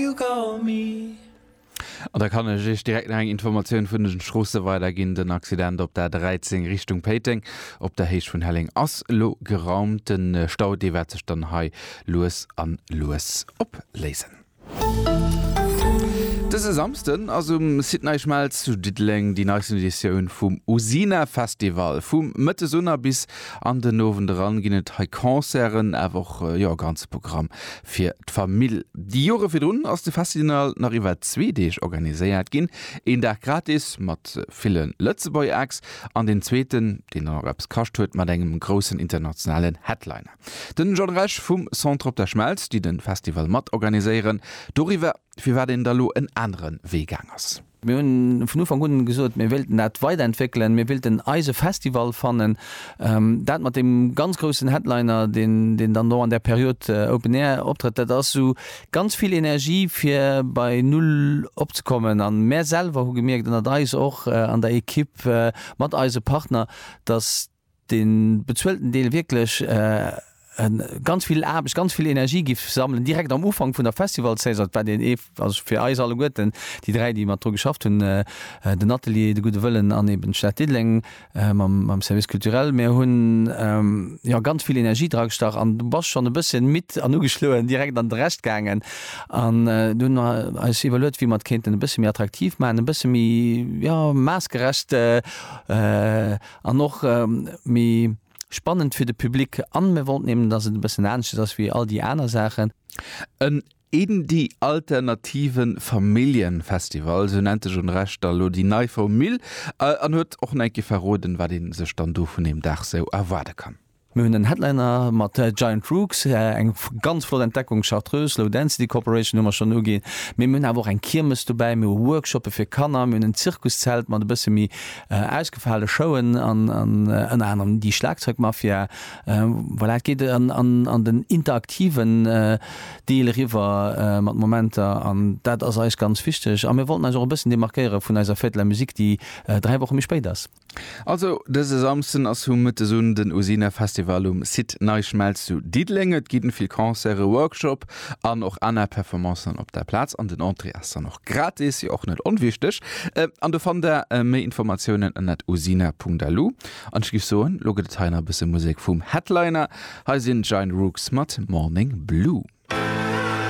you got me. An da kann ech Iech direkt nach eng Informatioun vun den Stroosse weiderginn. Den Accident op der A13 Richtung Péiteng op der Héicht vun Helleng ass elo geraumt. De Stau, dee wäert sech dann hei lues a lues opléisen. Dëse Samsden ass um Site Nei Schmelz zu Diddeleng déi neisten Editioun vum Usina Festival. Vu mëttes un a bis an den Owend eran ginn et hei Concerten, awer och e ganze Programm fir d'Famill. Déi Jore virdrun ass de Festinal nach iwwer zwee Deeg organiséiert ginn, een Dag gratis mat ville Lëtzebuerg-Acts an den zweeten, deen dann och eppes kascht huet, mat engem groussen internationalen Headliner. Den John Rech vum Centre Op der Schmelz, déi de Festival mat organiséieren, doriwwer, firwat een da lo en anere Wee gaang ass. Mir hunn vun Ufank un gesot, mir wéilten dat weiderentwéckelen, mir wéilten eise Festival fannen. Dat mat deem ganz groussen Headliner, deen dann do an där Period Open Air optrëtt, dat ass esou ganz vill Energie fir bei Null opzekommen. A mär selwer hu gemierkt, ënnert eis och an der Ekipp mat eise Partner, datt, de bezuelten Deel wierklech ganz vill Aarbecht, ganz vill Energie giff sammelen, direkt am Ufank vun der Festivalsaison. Dat war deen ee, also fir eis alleguerten, déi dräi, déi mat dru geschafft hunn, den Atelier, de Gudde Wëllen an eeben d'Stad Diddeleng mam Service culturel. Mir hunn, jo, ganz vill Energie dragestach an du bass schonn e bësschen midd an ugeschloen direkt an de Rescht gaangen. An du hunn mer eis iwwerluet, wéi mer et kéinten e bësse méi attraktiv maachen, e bësse méi, jo, maassgerecht. An och méi spannend fir de Public. An mir wollten eben, dass et e bëssen aneschters ass wéi all déi aner Saachen. En Indie alternative Familljenfestival, sou nennt sech un Recht da lo déi nei Formule an huet och en enke verroden, wat ee sech dann do vun deem Dag sou erwaarde kann. Mir hunn den Headliner mat Giant Rooks, eng ganz flott Entdeckung, Chartreuse, Low Density Corporation hu mer schonn uginn, mee mir hunn awer och eng Kiermes dobäi, mir hu Workshoppe fir Kanner, mir hunn en Zirkuszelt mat e bësse méi ausgefale Showen an ënner anerem déi Schlagzeugmafia. Voilà, et geet an den interaktiven Deel eriwwer mat Momenter an dat ass eis ganz wichteg a mir wollten eis och e bëssen demarkéiere vun eiser Fête de la Musique, déi dräi Woche méi spéit ass. Also dëse Samsden ass vu Mëttes un den Usina Festival um Site Nei Schmelz zu Diddeleng. Et ginn vill Concerte, Workshop an och aner Performancen op der Plaz. An den Entrée ass dann och gratis, jo och net onwichteg. An do fannt der méi Informatiounen ënnert usina.lu. An ech giff soen, lo gëtt et hei nach e bësse Musek vum Headliner. Hei sinn d'Giant Rooks mat Morning Blue.